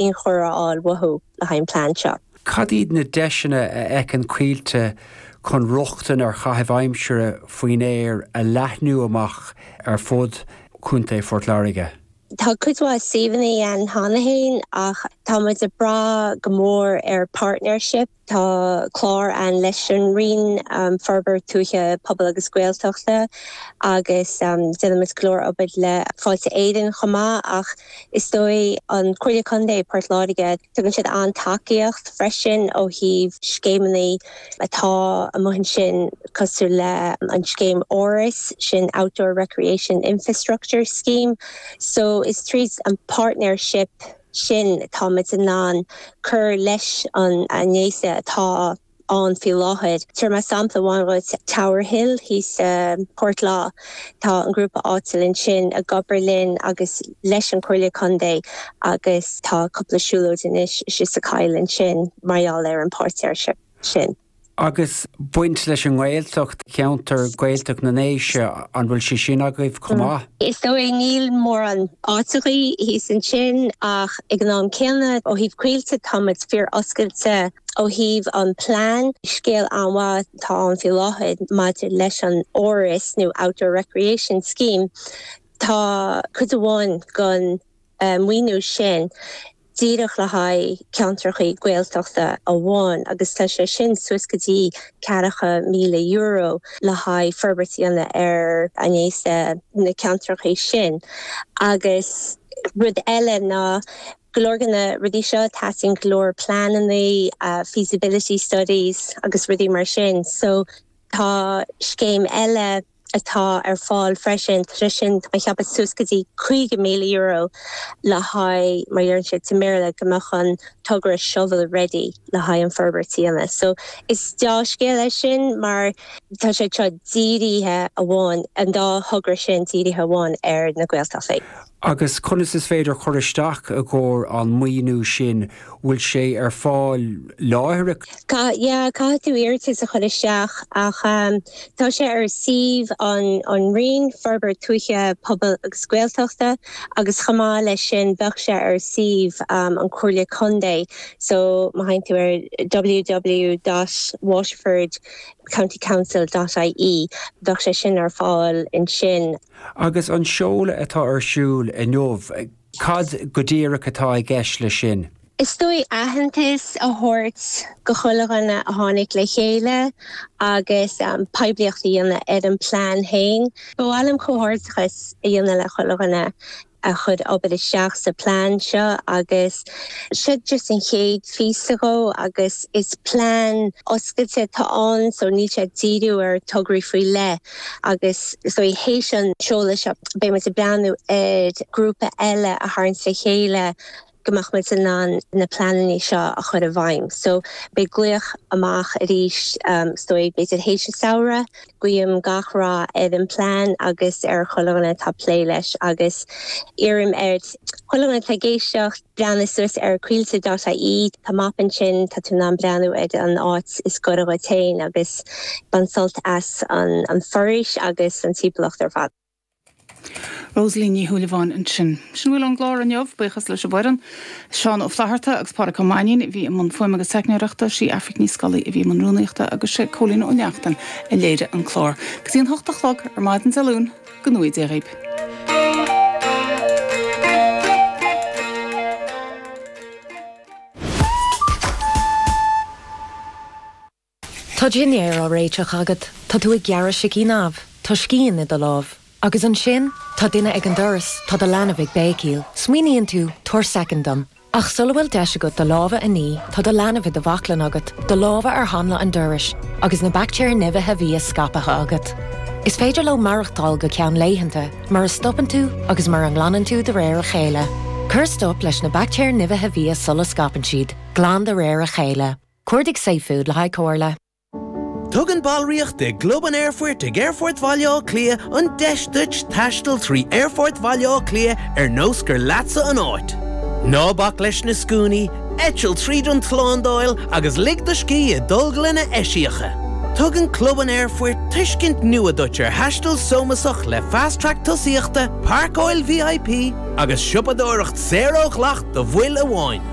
inchur a fháil uathu le haghaidh an plean seo. Cad iad na deiseanna a fheiceann Coillte chun rochtain ar chaithimh aimsire faoin aer a leathnú amach ar fud Chontae Phort Láirge? Tá cuid mhaith suíomhanna ann cheana féin ach tá muid ag brath go mór ar partnership. Tá clár ann leis an Roinn Forbairt Tuaithe, Pobail agus Gaeltachta agus déanaimid go leor obair le Fáilte Éireann chomh maith ach is dóigh an Comhairle Contae Port Láirge tugann siad an-tacaíocht freisin ó thaobh scéimeanna atá amuigh ansin cosúil le an scéim ORIS, sin Outdoor Recreation Infrastructure Scheme so is tríd an partnership. sin, táimid in ann cur leis an na háiseanna atá ann faoi láthair. Tabharfaidh mé sampla amháin dhuit, Tower Hill thíos i bPort Lách. Tá an grúpa áitiúil ansin ag obair linn agus leis an Comhairle Contae agus tá cúpla siúlóid anois istigh sa coill ansin mar gheall ar an partnership sin. Agus baint leis an nGaeltacht, ceantar Gaeltacht na nDéise, an bhfuil sé sin agaibh chomh maith? Is dóigh, níl mórán áiteachaí thíos ansin ach ag an am céanna ó thaobh Coillte tá muid fíor oscailte ó thaobh an plean. Scéal an-mhaith atá ann faoi láthair maidir leis an ORIS nó Outdoor Recreation Scheme. Tá cuid amháin gon. maoiniú sin díreach le haghaidh ceantracha Gaeltachta amháin agus tá sé sin suas go dtí €40,000 le haghaidh forbairt a dhéanamh ar áiseanna sna ceantracha sin agus rud eile ná go leor de na rudaí seo teastaíonn go leor pleananna, feasibility studies agus rudaí mar sin so tá scéim eile. atá ar fáil freisin. Tá sé sin tá mé ag ceapadh suas go dtí €50,000 le haghaidh, mar a dheireann siad sa mBéarla, go mbeadh an togra shovel ready le haghaidh an fhorbairt a dhéanamh. So is dea-scéal é sin mar tá sé seo dírithe amháin, an dá thogra sin dírithe amháin ar na Gaeltachtaí. Agus conas is féidir cur isteach i gcomhair an maoiniú sin? Bhfuil sé ar fáil láithreach? Caith, yeah, caithfidh tú iarratas a chur isteach ach tá sé ar suíomh an an Roinn, Forbairt Tuaithe, Pobail agus Gaeltachta agus chomh maith leis sin bheadh sé ar suíomh an Comhairle Contae so má théann tú ar ww dot waterford county council dot ie bheadh sé sin ar fáil ansin. Agus an seoladh atá ar siúl inniu, cad go díreach atá i gceist leis sin? Is dóigh aitheantas a thabhairt go chuile dhuine a tháinig le chéile agus poiblíocht a dhéanamh ar an bplean féin. Ba mhaith liom comhghairdeachas a dhéanamh le chuile dhuine a chuir obair isteach sa plean seo agus seo just an chéad phíosa dhe agus is plean oscailte atá ann so níl sé ag díriú ar tograí faoi leith agus so théis an seoladh seo beidh muid ag breathnú ar grúpa eile a tharraingt le chéile. go mbeadh muid in ann na pleananna seo a chur i bhfeidhm. So, beidh glaoch amach arís is dóigh, b'fhéidir théis an samhradh. Guím gach rath ar an plean agus ar chuile dhuine atá ag plé leis agus iarraim ar chuile dhuine atá ag éisteacht breathnú suas ar Coillte dot IE. Tá map ansin, tá tú in ann breathnú ar an áit is gaire dhuit féin agus bain sult as an foraois agus an timpeallacht ar fad. Rosaleen Ní Shúilleabháin ansin. Sin a bhfuil ón gclár inniu. Buíochas leis an bhfoireann, Seán Ó Flaithearta agus Pádraig Ó Mainnín a bhí i mbun fuaime agus teicneoireachta, sí Aifric Ní Scolaí a bhí i mbun rúnaíochta agus sé Cóilín Ó Neachtain a léirigh an clár. Go dtí an hocht a chlog ar maidin Dé Luain, go ngnóthaí Dia dhaoibh. Tá dinnéar á réiteach agat, tá tú ag gearradh sicín amh, tá scian i do lámh. Agus ansin, tá duine ag an doras, tá do leanbh ag béicíl. Smaoiníonn tú, 'Tabhair soicind dom. Ach sula bhfuil deis agat do lámha a ní, tá do leanbh i do bhaclainn agat, do lámha ar hanla an dorais, agus na baictéir nimhithe bhia scaipthe agat. Is féidir leo maireachtáil go ceann laethanta, mura stopann tú agus mura nglanann tú de réir a chéile. Cuir stop leis na baictéir nimhithe bhia sula scaipeann siad, glan de réir a chéile. Cuardaigh safefood le haghaidh comhairle. Tugann ballraíocht i gClub an Aerfoirt ag Aerfort Bhaile Átha Cliath an deis duit taisteal trí Aerfort Bhaile Átha Cliath ar nós gur leatsa an áit. Ná bac leis na scuainí, eitil tríd an tslándáil agus lig do scíth i dtolglanna eisiacha. Tugann Club an Aerfoirt tuiscint nua duit ar thaisteal sómasach le Fast Track Tosaíochta, Páirceáil VIP agus siopadóireacht saor ó dhleacht do bhaill amháin.